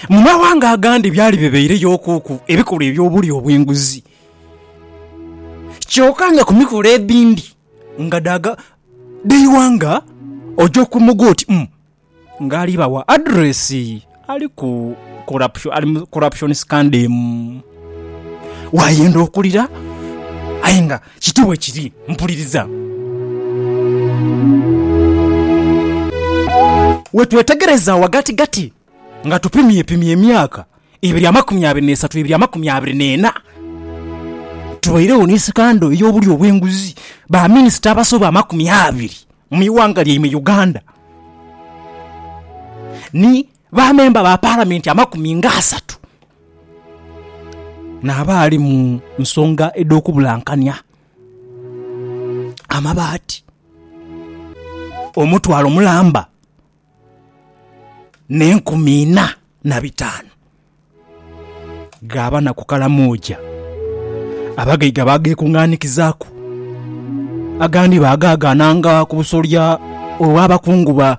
Mu maghanga agandi byali bibaireyo okuuku ebikolwa eby'obulya obw'enguzi. Kyoka nga ku mikolo edhindi nga dha dhaiwa nga oja okumoga oti umm ng'ali bawa addresi ali ku corruption ali mu corruption scandem. Waayenda okulira aye nga Kityo bwe kiri. Mpuliriza. We twetegereza ghagatigati, nga tupimyepimya emyaka ebiri amakumi abiri n'esatu ebiri amakumi abiri n'ena, tubairegho ni sikando ey'obulyo obw'enguzi, baminisita abasoba amakumi abiri mu ighanga lyaimwe Uganda, ni. Bamemba ba Palamenti amakumi nga asatu n'abaali mu nsonga edh'okubulankania amabaati omutwalo mulamba n'enkumi ina na bitaanu ghaaba na ku Kalamoja. Abagaiga baageekunganikizaaku, agandi baagaagaananga ku busolya olw'abakungu ba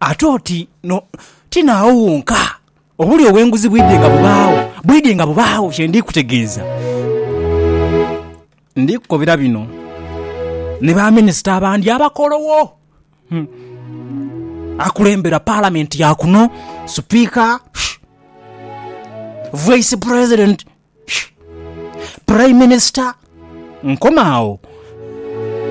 Ate oti no, ti naagho wonka. Obulyo obw'enguzi bwidhie nga bubaagho, bwidhie nga bubaagho kye ndi kutegeeza. Ndi kukobera bino ni baminisita abandi abakolowo, akulembera Palamenti ya kuno, Sipiika, Vaisi Pulezidenti, Puraiminisita. Nkoma agho.